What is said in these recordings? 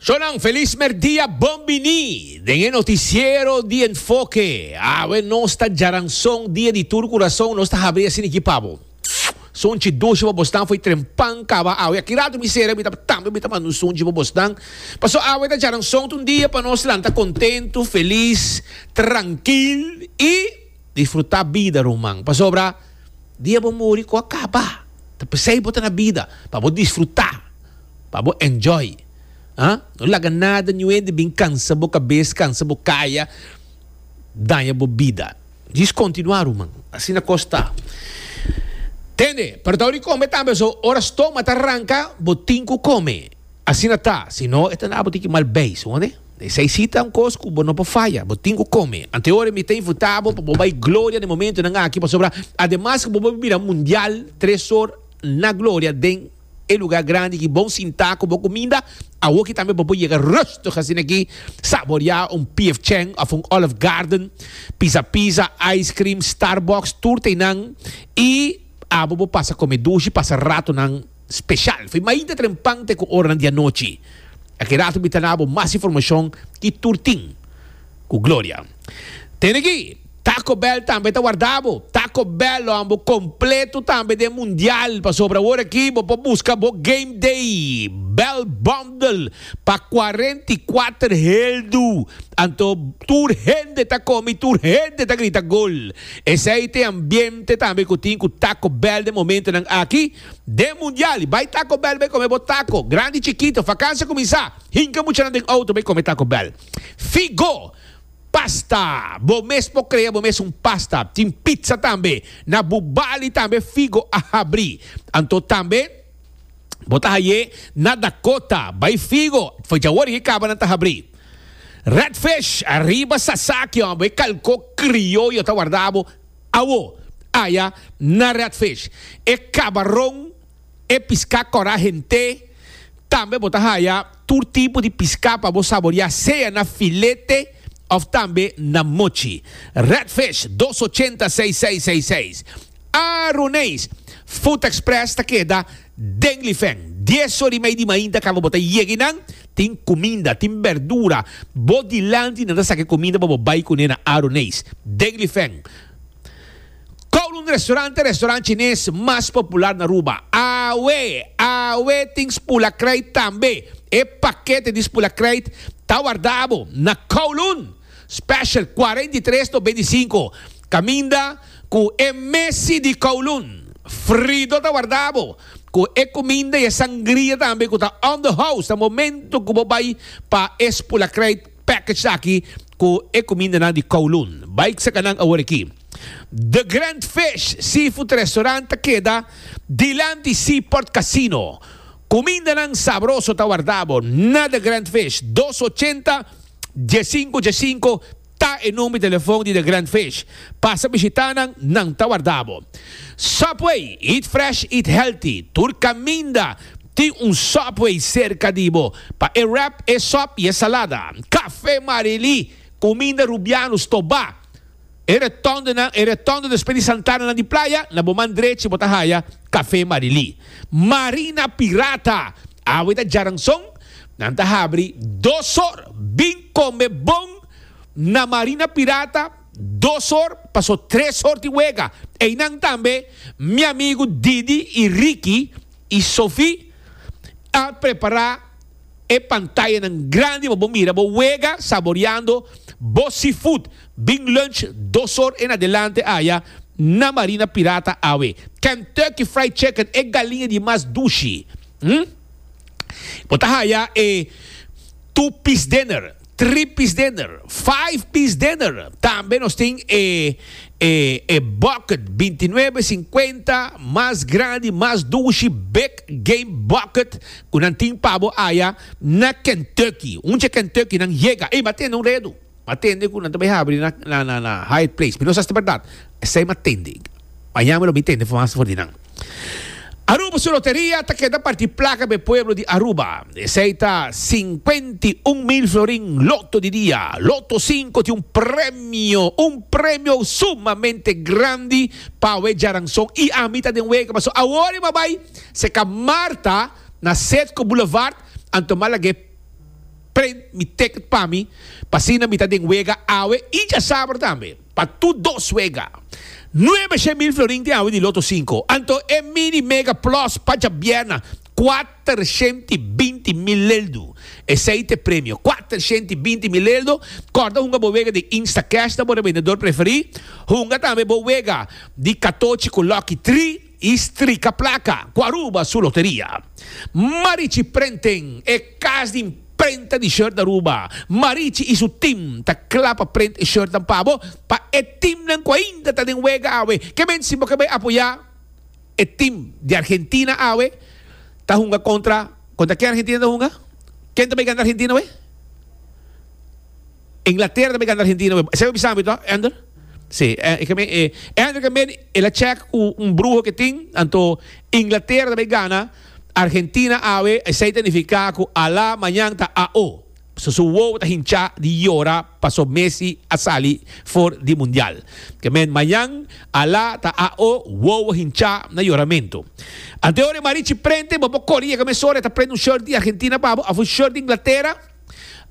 Zonan, felis merdia, bon bini den e noticiero di Enfoke. Awe nos ta djaranson dia di tur curason, nos ta habri asina aki pa bo. Sonchi doshi pa bosnan foi trempan caba awe. Aki rato mi sera, mi ta tambe mi ta manda un sonchi pa bosnan. Paso awe ta djaranson ta un dia pa nos lanta contento, felis, trankil y. Disfrutá bida, ruman, pasobra dia bo muri ku a kaba. Ta p'esei bo ta na bida, pa bo disfrutá, pa bo enjoy. A No laga nada ni un hende bin kansa bo kabes, kansa bo kaya, daña bo bida. Djis kontinuá, ruman. Asina kos ta. Tende, perdau di kome tambe so. Ora stoma ta ranka, bo tin ku kome. Asina ta, si no e ta na bo tin ki mal bay, suone? E sai si ta un cos cu bo no por faya, bo tin cu come. Anteora mi ta infuta bo pa bo bay gloria n'e momentonan aki, pasobra ademas cu bo por mira mundial tres or na gloria den e lugar grandi ki bon sinta cu bo cuminda, awoki tambe bo por yega rustig asina aki, saborea un P.F. Chang of un Olive Garden, pisa pisa, ice cream, Starbucks, tur ta einan y abo bo pasa come dushi, pasa ratonan. special. Foi mainta trempante cu oranan di anochi. Aki rato mi ta na bo mas informacion y tur tin. Cu gloria. Tene aki, Taco Bell tambe ta warda bo. Taco Bell lo ambo completo tambe den mundial pasobra awor aki bo por busca bo Game Day Bell Bundle pa cuarenta y cuater heldu. Anto tur hende ta come y tur hende ta grita gol. Esey t'e ambiente tambe cu tin cu Taco Bell den momentonan aki. Den mundial bai Taco Bell bai come bo taco, grandi chikito, fakansia kuminsá, hinka muchanan den outo bai come Taco Bell. Figo! Pasta! Bo mes por krea bo mes un pasta. Tin pizza tambe. Na bu bali tambe Figo a habri. Anto tambe bo ta haye na Dakota bai Figo, djawor e kabanan ta habri. Redfish, ariba Sasaki, hombre, e kalko krioyo ta warda bo. Awo, aya na Redfish e kabaron, e piská kòrá hent'é. Tambe bo ta haya tur tipo di piská pa bo saboriá sea na filete òf tambe na mochi. Redfish dos ochenta seis seis seis seis. Aruneis, Food Express ta keda. Den lifen, dies or i mei di mainta karu bo ta yega einan, tin kuminda, tin bèrdura bo dilanti i nan ta saka e kuminda pa bo bai kuné na Aro Neis. Den lifen, Kowloon Restaurant ta e restaurant chines mas popular na Aruba. Awe! Awe tin spulakrijt tambe! E pakete di spulakrijt ta wardabo na Kowloon! Special cuarenta y tres to beinti cinco caminda cu e mesi di Kowloon frido ta warda bo cu e cuminda y e sangria tambe cu ta on the house ta momento cu bo bay pa e spulacryt package aki cu e cumindanan di Kowloon bay saca nan awor aki The Grand Fish Seafood Restaurant ta keda dilanti Seaport Casino cumindanan sabroso ta warda bo na The Grand Fish dos ochenta Djecinku djecinku ta e number di telefon di The Grand Fish. Pasa bishita nan, nan ta warda bo. Subway, eat fresh, eat healthy. Tur caminda tin un Subway cerca di bo pa e wrap, e sop y e salada. Cafe Marily, cuminda Rubiano, Stobá, E retondonan, e retondo despues di santananan di playa, na bo man drechi bo ta haya Café Marilí. Marina Pirata! Awe ta djaranson, nan ta habri dos or. Bin combe bon na Marina Pirata dos or, paso tres or di wega. Eynan tambe mi amigo Didi y Ricky y Sophie a prepara. E pantayanan grandi pa bo mira bo wega saboreando bo seafood. Bin lunch dos or en adelante aya na Marina Pirata awe. Kentucky Fried Chicken, e galiña di mas dushi. Bo ta haya e two piece dinner. Three piece dinner, five piece dinner, tambe nos tin e e e bucket binti nuebe sinkuenta mas grandi mas dushi big game bucket ku nan tin pa bo aya na Kentucky unche Kentucky nan yega ey matende un redu matende ku nan ta bay habri na na na Hyatt place mi no sa si ta berdad esey matende mañana mi lo bay tende mas for di nan. Aruba su loteria ta keda parti plaka pa e pueblo di Aruba. Esei ta sinkuenta i un mil florin loto di dia. Loto sinku tin un premio, un premio sumamente grandi pa awe djaranson i ami ta den wega. Paso awor e m'a bai seka Marta na Sedco Boulevard anto m'a laga e prent mi ticket pa mi pa asina mi ta den wega awe i djasabra tambe. Pa tur dos wega, nuebe shen mil florin tin hawe di loto sinku. Anto e Mini Mega Plus pa djabièrna, kuater shent i binti mil leldu. Esei t'e premio, kuater shent i binti mil leldu. Kòrda hunga bo wega di Instacash na bo rebendedor preferí. Hunga tambe bo wega di katochi ku Lucky Three. I strika plaka ku Aruba su loteria. Marichi Printing, e kas di imprenta di short na Aruba. Marichi i su tim ta kla pa print e shortnan pa bo. Pa e timnan ku ainda ta den wega awe, ke mente si bo ke bai apoyá e tim di Argentina awe ta hunga kontra, kontra ken Argentina ta hunga? Ken ta bai gana Argentina awe? Inglaterra tambe gana Argentina we. Esei bo bisa ami to, Ander? Si, e ke men e. Ander ke men el a check ku un bruho ke tin, anto Inglaterra tambe gana Argentina awe, esei ta nifiká ku alá mañan ta AO. So su wowo ta hinchá di yora paso Messi a sali for di mundial. Ke men mañan, alá ta AO, wowo hinchá na yoramentu. Ante ora e marichi prente, bo por kore yega mesora e ta prende un shirt di Argentina pa bo of un shirt di Inglaterra.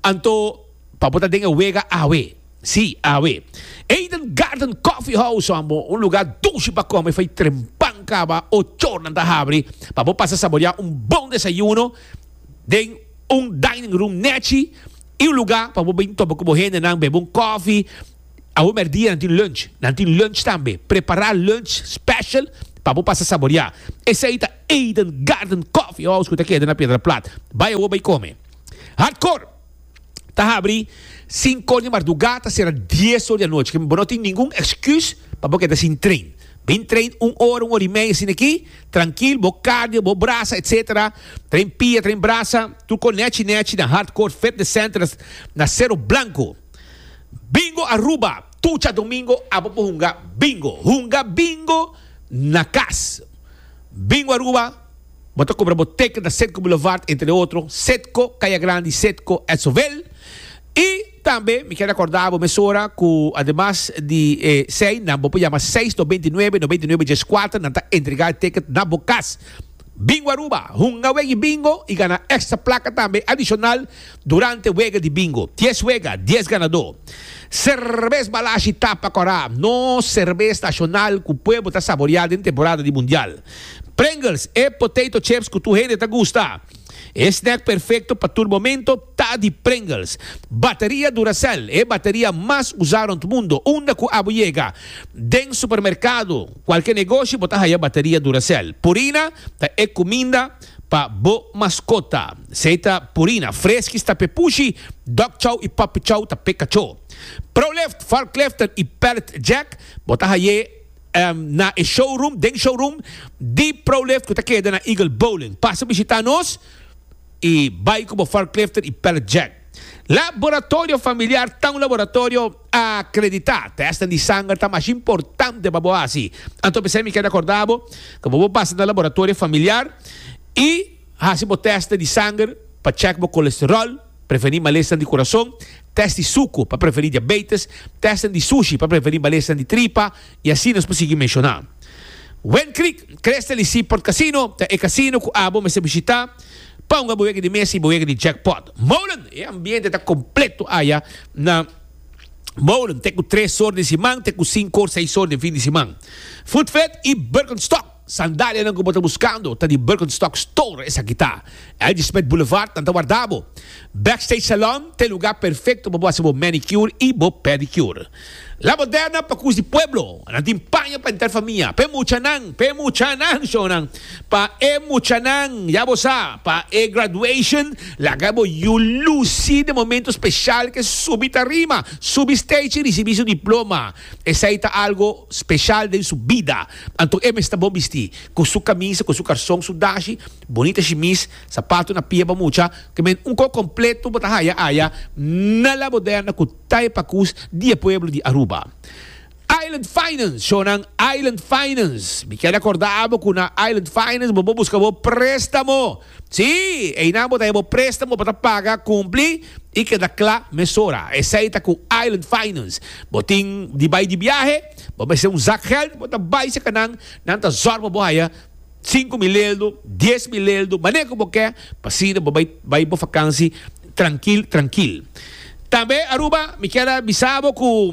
Anto, pa bo ta den e wega awe. Sí, awe. Eden Garden Coffee House so amo un lugá dushi pa kome fai trempan kaba ocho ornan ta habri pa bo pasa saboriá un bon desayuno den un dining room nèchi i un lugá pa bo bin topa ku bo hendenan, bebe un kòfi. Awe mèrdia nan tin lunch. Nan tin lunch tambe. Prepará lunch special pa bo pasa saboriá. Esei ta Eden Garden Coffee House ku ta keda na Piedra Plat. Bai awe bai kome. Hardcore ta habri sinku or di marduga ta sera dies or di anochi ke bo no tin ningun excuse pa bo keda sin train bin train un ora un ora y media sin aki trankil bo cardio bo brasa etc train pia train brasa tur kon nechi nechi na hardcore fitness center na sero blanco bingo Aruba tucha domingo abo por hunga bingo hunga bingo na kas bingo Aruba Bo ta cobra bo teken ta Cetco Boulevard entre otro, Cetco, Caya Grandi, Cetco, Edson Vale. Y tambe mi kier recorda bo mesora cu ademas di e sei nan bo por yama seis no beintinuebe no beintinuebe diescuater nan ta entrega e teken na bo cas. Bingo Aruba, hunga wega y bingo y gana extra placa tambe adicional durante wega di bingo. Dies wega, dies ganador. Cervez Balashi Tapa Cora, nos cervez nacional cu pueblo ta saboria den temporada di Mundial. Pringles, e potato chips cu tur hende ta gusta. E snack perfecto pa tur momento ta di Pringles. Bateria Duracell, e bateria mas usa rond mundo, unda cu abo yega den supermercado, cualke negoshi bo ta haya bateria Duracell. Purina, ta e cuminda pa bo mascota. Esey ta Purina, Friskies ta p'e pushi, Dog Chow y Puppy Chow ta p'e cachó. Prolift, Varkliften y Pallet Jack, bo ta haye. na e showroom, den showroom, di ProLift cu ta keda na Eagle Bowling. Pasa bishita nos y bay cu bo forklifter y pallet jack. Laboratorio Familiar ta un laboratorio acredita. Tesnan di sanger ta mas importante pa bo haci. Anto p'esey mi keda corda bo cu bo por pasa na Laboratorio Familiar y haci bo testnan di sanger pa check bo colesterol, Prevení malesnan di kurason, tèst di suku pa prevení diabeites, tèstnan di sushi pa prevení malesnan di tripa, i asina nos por sigui menshoná. Wend Creek Crystal i Seaport Casino ta e kasino ku abo mester bishitá pa hunga bo wega di mes i bo wega di jackpot. Molen E ambiente ta kompleto aya na Molen, te ku tres or di siman te ku sinku or seis or den fin di siman. Food Fed i Birkenstock. Sandalianan ku bo ta buskando ta di Birkenstock Store, esaki ta. Ladysmith Boulevard nan ta warda bo. Backstage Salon ta e lugá perfekto pa bo hasi bo manicure i bo pedicure. La Moderna pa kus di pueblo, nan tin paña pa enter famia, pa e muchanan, pa e muchanan, shonnan, pa e muchanan, ya bo sa, pa e graduation, laga bo yu lusi den momento speshal ke subi tarima, subi stage i risibí su diploma, esei ta algo speshal den su bida. Anto e mester bon bistí, ku su kamisa, ku su karson, su dashi, bonita shimis, sapatu na pia pa mucha, ku men un kò kompletu bo ta haya aya na La Moderna ku Tae Pakus di e pueblo di Aruba. Island Finance, shownan Island Finance. Mi keda kordá bo ku na Island Finance bo por buska bo préstamo. Sí, einan bo ta heba bo préstamo, bo ta paga kumpli i keda kla mesora. Esei ta ku Island Finance. Bo tin di bai di biahe, bo mester un zak gèld, bo ta bai serka nan, nan ta zòrg pa bo haya sinku mil eldu, dies mil eldu, manera ku bo ke, pa asina bo bai bai bo vakansi trankil trankil. Tambe Aruba, mi kier a bisa bo ku.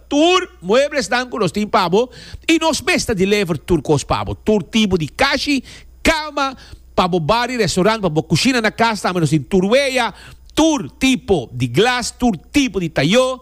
Tur mueblesnan ku nos tin pa bo i nos mes ta deliver tur kos pa bo. Tur tipo di kashi, kama, pa bo bar i restaurant, pa bo kushina na kas tambe nos tin tur weya, tur tipo di glas, tur tipo di tayó.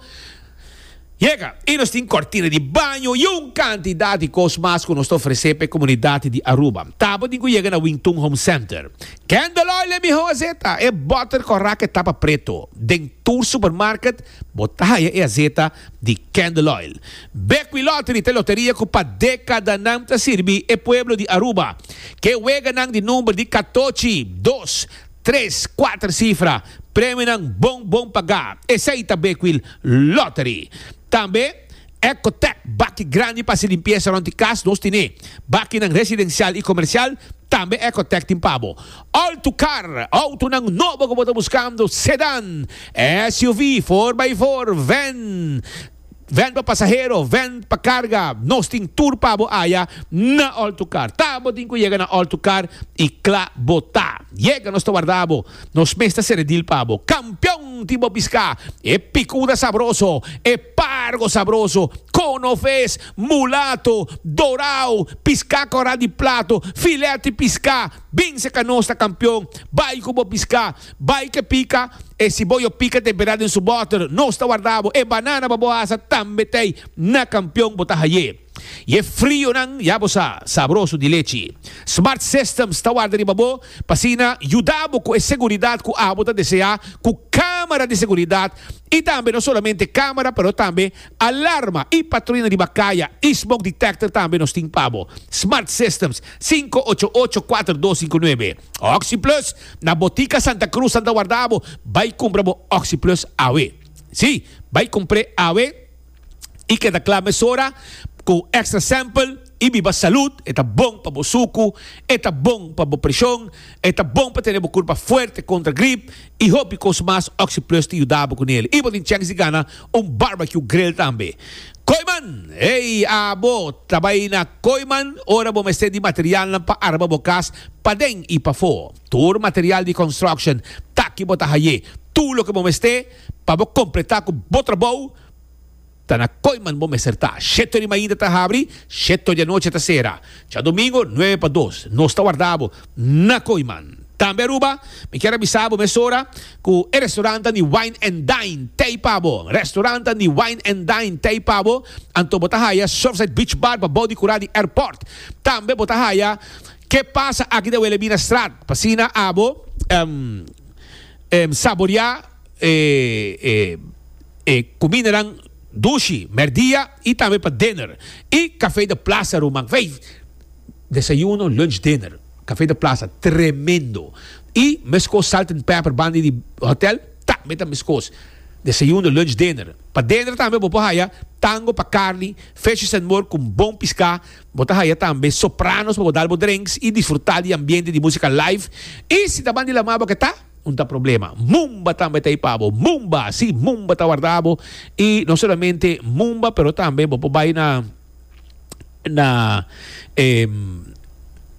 Yega, i nos tin kortina di baño i un kantidat di kos mas ku nos ta ofresé pa e komunidat di Aruba. Tabatin ku yega na Wing Tun Home Center. Candle oil e miho azeta, e butter cu a raca e tapa preto. Den tur supermarket bo ta haya e azeta di Candle oil. Bequi Lottery ta e loteria cu pa decadanan ta sirbi e pueblo di Aruba. Ke weganan di number di catochi, dos, tres, cuater cifra. Premionan bon bon paga. Esey ta Bequi Lottery. Tambe. Ecotec baki grandi pa hasi limpiesa rond di cas nos tine. Bakinan residencial y comercial tambe Ecotec tin pa bo. Alto car, autonan nobo cu bo ta buscando, sedan, SUV, four by four, van, van pa pasahero, van pa carga, nos tin tur pa bo aya na Alto car. Ta bo tin cu yega na Alto car y cla bo ta yega nos ta warda bo. Nos mes ta sere deal pa bo. Campeon tin bo pisca e picuda sabroso, e pargo sabroso, cono ves, mulato, dorao, pisca cora di plato, filet di pisca. Binse ca nos ta campeon. Bay cu bo pisca. Bay ke pica e siboyo pica te bera den su boter. Nos ta warda bo. E banana pa bo hasa tambe tey na campeon bo ta haye. Y e frionan, ya bo sa, sabroso di lechi. Smart Systems ta warda riba bo pa asina yuda bo cu e seguridad cu abo ta desea cu camera di seguridad y tambe no solamente camera pero tambe alarma y patruina riba caya y smoke detector tambe nos tin pa bo. Smart Systems, sinku ocho ocho kuater dos sinku nuebe. OxyPlus, na Botica Santa Cruz nan ta warda bo, bay cumpra bo OxyPlus awe. Si, bay cumpr'e awe. y keda kla mesora cu extra sample y biba salud, e ta bon pa bo sucu, e ta bon pa bo presion, e ta bon pa tene bo curpa fuerte contra grip y hopi cos mas, Oxyplus ta yuda bo cu nel y bo tin chance di gana un barbecue grill tambe. Kooiman! Hey abo ta bay na Kooiman ora bo mester di materialnan pa arma bo cas paden y pafo, tur material di construction ta aki bo ta haye tur loke bo mester pa bo completa cu bo trabou, ta na koiman bo mester ta. Sheto di mainta ta habri, sheto di anochi ta sera. Djadomingo nuebe pa dos nos ta warda bo na koiman. Tambe Aruba, mi kier a bisa bo mesora ku e restorantan di Wine and Dine tei pa bo. Restorantan di Wine and Dine tei pa bo, anto bo ta haya Surfside Beach Bar pa bou di kura di airport. Tambe bo ta haya Ke Pasa Aki Dawele Bina Straat pa asina abo saborea e E kumindanan dushi, mèrdia i tambe pa diner i Café de Plaza ruman vei. Desayuno, lunch, diner Café de Plaza tremendo i meskos Salt and Pepper banda di hotèl tambe ta meskos. Desayuno, lunch, diner Pa diner tambe bo por haya tango pa karni, fishes and more ku bon piská. Bo ta haya tambe sopranos pa bo dal bo drenks i disfrutá di ambiente di músika live. I si ta banda di lamá bo ke ta? Un ta problema. Mumba tambe ta ipa bo. Mumba, si, Mumba ta warda bo. I no solamente Mumba, pero tambe bo por bai na na e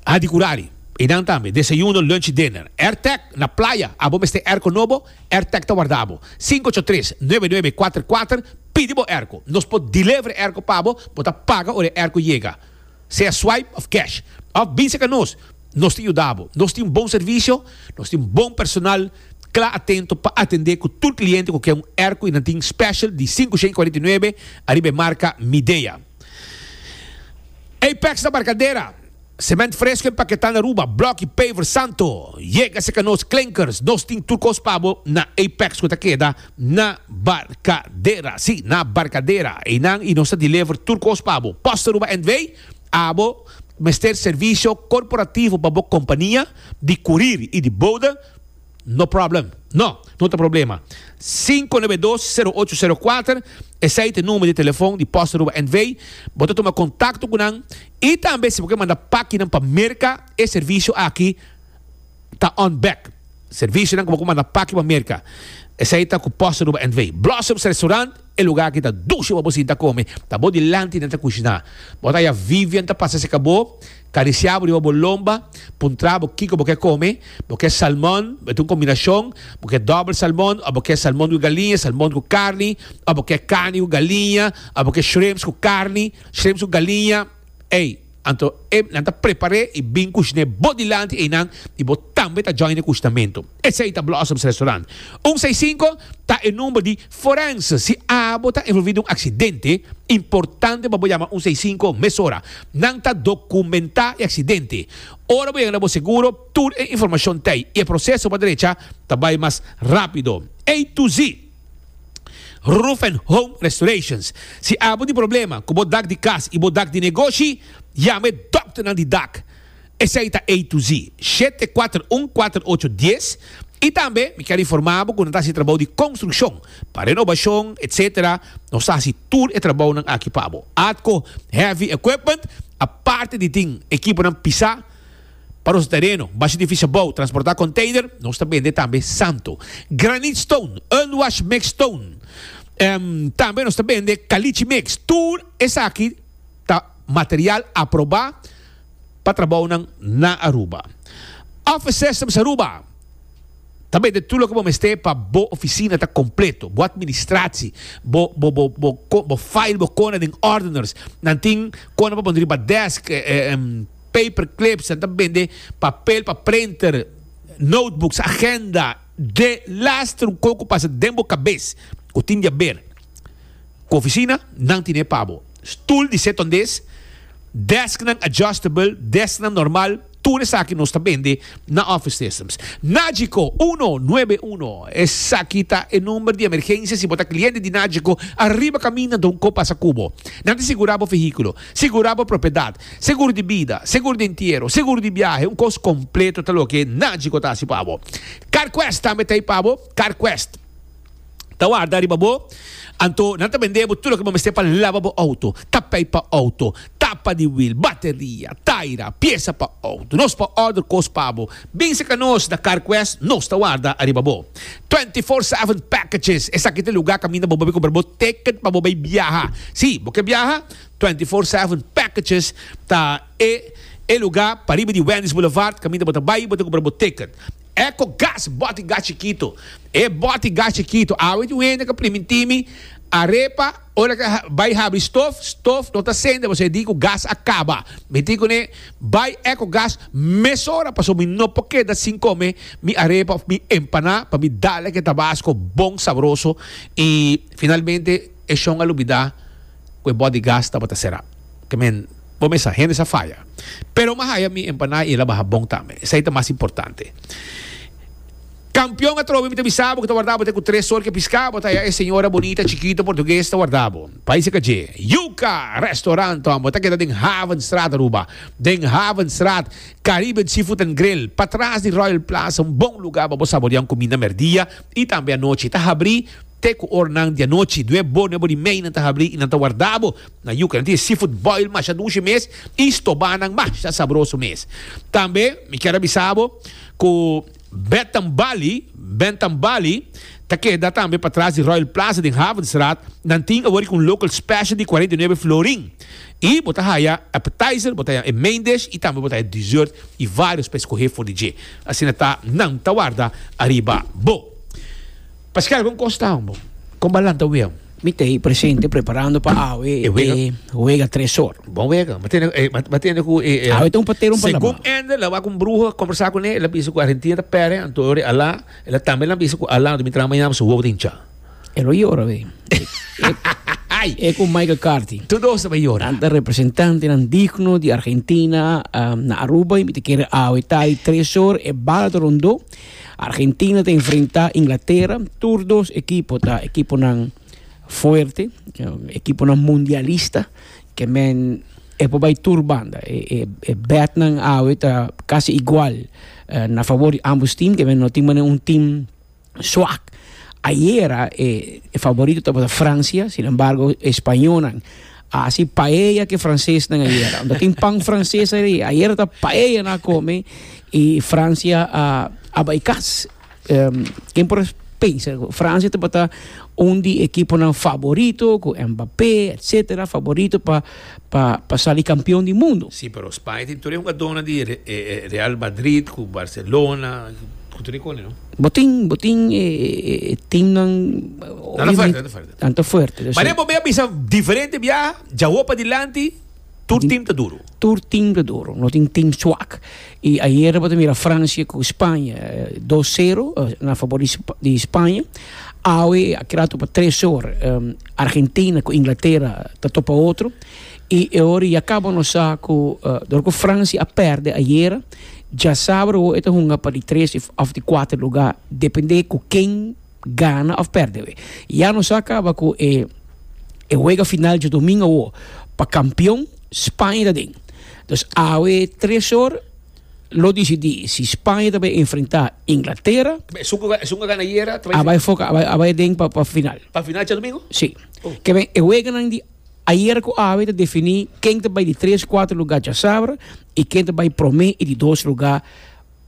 Hadikurari. I nan tambe, desayuno, lunch i dinner. Airtec na playa, abo mester airco nobo? Airtec ta warda bo. Sinku ocho tres, nuebe nuebe kuater kuater, pidi bo airco. Nos por deliver airco pa bo, bo ta paga ora e airco yega. sea swipe of cash, of bin seka nos, nos ta yuda bo. Nos tin un bon servisio, nos tin bon personal kla atento pa atende ku tur kliente ku ke un airco y nan tin special di sinku shen kuarenta i nuebe ariba e marka Midea. Apex na Barcadera, Cement fresco en paketá na Aruba, block y paver Santo. Yega seka nos, Klinkers, nos tin tur kos pa bo na Apex ku ta keda. Na barkadera, si, na barkadera. Einan i nos ta deliver tur kos pa bo. Post Aruba NV, Abo mester servisio korporativo pa bo kompania di kurir i di bouda? No problem. No, no ta problema. Sinku nebe dos, sero ocho, sero kuater, esei ta e number di telefon di Post Aruba NV. Bo ta tuma kontakto ku nan i tambe si bo ke manda pakinan pa Merka e servisio aki. ta on bek. Servisionan ku bo ku manda paki pa Merka, esei ta ku poster Aruba NV. Blossoms Restaurant, e lugá ki ta dushi pa bo sinta kome, ta bo dilanti nan ta kushiná. Bo ta haña Vivian ta pasa serka bo, karisiá bo riba bo lomba, puntrá bo kiko bo ke kome, bo ke salmon, bo ta un kombinashon, bo ke dòbel salmon òf bo ke salmon ku galiña, salmon ku karni, òf bo ke karni ku galiña, òf bo ke shrimps ku karni, shrimps ku galiña. Ey, anto e nan ta prepar'é i bin kush'né bo dilanti einan i bo tambe ta join e kushtamentu. Esei ta Blossoms Restaurant. Un sei sinku ta e number di Forenz si abo ta envolví den un aksidente. Importante pa bo yama un sei sinku mesora. Nan ta dokumentá e aksidente. Ora bo yega na bo seguro, tur e informashon t'ei i e proseso pa drecha ta bai mas rápido. Ey tu zi! Roof and Home Restorations. Si abo tin problema ku bo dak di kas i bo dak di negoshi, yama e dòkternan di dak. Esei ta A to Z, shete kuater un kuater ocho dies. I tambe mi kier informá bo ku nan ta hasi trabou di konstrukshon, pa renobashon, etc. Nos ta hasi tur e trabounan aki pa bo. Atco Heavy Equipment, aparte di tin ekiponan pisá, Pa nos tereno, basha di fishabou, transportá container, nos ta bende tambe santo. Granite stone, unwashed mixed stone. Em, tambe nos ta bende caliche mix. Tur esaki ta material aprobá pa trabounan na Aruba. Office Systems Aruba ta bende tur loke bo mester pa bo oficina ta completo, bo administratie, bo, bo, bo, bo, bo file, bo cona den ordeners. Nan tin cona pa pone riba desk, em, paperclips, nan ta bende papel pa printer, notebooks, agenda, de lastre un koko ku pasa den bo kabes ku tin di aber ku ofisina, nan tine pa bo. Stul di set ondes, desknan adjustable, desknan normal, tur esaki nos ta bende na Office Systems. Nagico uno nuebe uno, esaki ta e number di emergensia si bo ta kliente di Nagico, ariba kaminda nan ta un kos pasa ku bo. Nan ta sigurá bo vehíkulo. Segura bo propiedat, segur di bida, segur di entiero, segur di biahe, un kos kompleto ta loke nan djiko ta hasi pa bo. Carquest tambe ta ei pa bo, Carquest ta warda riba bo, anto nan ta bende bo tur loke bo mester pa laba bo outo, tapei pa outo, tapa di wiel, bateria, taira, piesa pa outo, nos por order kos pa bo, binse ka nos na Carquest nos ta warda ariba bo. Twenty four seven packages, esaki ta e luga kaminda bo bo bai compra bo ticket pa bo bai biaha, si bo ke biaha, Twenty Four Seven Packages ta e e lugá pariba di Wendy's Boulevard kaminda bo ta bai bo ta kumpra bo ticket. Echo Gas Bòti Gas Chikitu E bòti gas chikitu awe tin un hende ku priminti mi a repa ora ke bai habri stof, stof no ta sende pasobra e di ku gas a kaba. Mi tin kuné bai Echo Gas mesora pasobra mi no por keda sin kome mi arepa òf mi empaná pa mi dal e ke tabasko bon sabroso i finalmente e shon a lubidá. cu e bot di gas tabata cera. Te men, bo mesa, hende sa faya. Pero m'a haya mi empanada y el a baha bon tambe. Esey ta mas importante. Campeon atrobe mi ta bisa bo cu ta warda bo te cu tres sol cu e pisca bo ta haya e señora bonita, chikito, portugues ta warda bo. País e ka dje. Yuca! Restaurant Tom, bo ta keda den Havenstraat Aruba. Den Havenstraat, Caribbean Seafood and Grill, patras di Royal Plaza, un bon lugar pa bo saborea un cuminda merdia y tambe anochi. Ta habri. Te ku ornan di anochi, nue bone bo di meinan ta habrí i nan ta wardá bo na yuka. Nan tin e seafood boil masha dushi mes i stobá nan masha sabroso mes. Tambe mi kier a bisa bo ku Bentham Bali, Bentham Bali, ta keda tambe patras di Royal Plaza den Havenstraat. Nan tin awor riba un local special di cuarenta y nueve florin. I bo ta haya appetizer, bo ta haya e main dish i tambe bo ta haya dessert i varios pa escohé for di dje. Asina ta nan ta warda ariba bo. Pascal, con cos ta bo? Con balan ta wea? Mi ta ei presente preparando pa awe e wega Tresor. Bon wega, ma tene, eh, ma tene ku e eh, awe ta un patero pa Segun Ender, la wa ku un bruho conversa ku ne, la bisa ku Argentina ta pere, anto ori ala, la tambe la bisa ku ala, mi tra mañana su wou ta hincha. E lo yora we. e ku Michael Carty. Tu dos ta yora. Anta representante nan digno di Argentina um, na Aruba, mi te kere awe tai Tresor e bala ta rondo. Argentina ta enfrentá Inglatera, tur dos ekipo ta ekiponan fuerte, ekiponan mundialista, ke men e por bai tur banda. E, e, e betnan awe ta kasi igual na favor di ambos tim, ke men no tin manera un tim swak. Ayera e, e favorito tabata Francia, sin embargo e spañonan. A hasi paella ke fransesnan ayera. Unda tin pan franses ari. Ayera ta paella na come i Francia a, a bai kas. Um, ken por pensa, Francia te bata un di ekiponan favorito, ku Mbappé, etcetera, favorito pa, pa, pa sali kampion di mundu. Sí, pero Spaña tin tur e hugadónan di Re- eh, eh, Real Madrid ku Barcelona, ku tur e kone, no? Bo tin, bo tin e, e, e teamnan Nan ta oye, falta, mi- nan ta falta. Tanto fuerte. Mari a bobe a bisa diferente biaha, djawo padilanti, tur team ta duro. Tur team ta duro, no tin team swak. I ayer bo ta mira Francia ku Spaña, dos sero na fabor di Spaña. Awe a keda atu pa tres or, Argentina ku Inglatera ta topa otro. I e ora ya kaba nos sa ku, dor ku Francia a pèrdè ayer, dja sabadou e ta hunga pa di tres òf di kuater lugá, dependé ku ken. gana of perde we. Ya nos a caba cu e e wega final djodomingo awo pa campeon Spaña ta den. Dus awe tres or lo dicidi si Spaña ta bay enfrenta Inglatera. Esun cu esun cu a gana ayer ta bay. A bay foca a bay a bay den pa pa final. Pa final djodomingo? Si. Keben e weganan di ayer cu awe ta defini ken ta bay di tres cuatro lugar djasabra y ken ta bay prome y di dos lugar.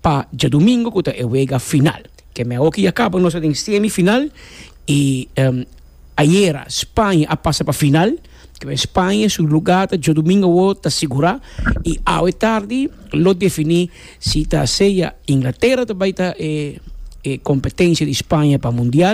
Pa djadumingu ku ta e wega final. Ke meh oki ya kaba, nos ta den semi final i ayera Spaña a pasa pa final. Kibera Spaña su lugá ta djadumingu awo ta sigurá i awe tardi lo definí si ta sea Inglatera ta bai ta e kompetensia di Spaña pa mundial.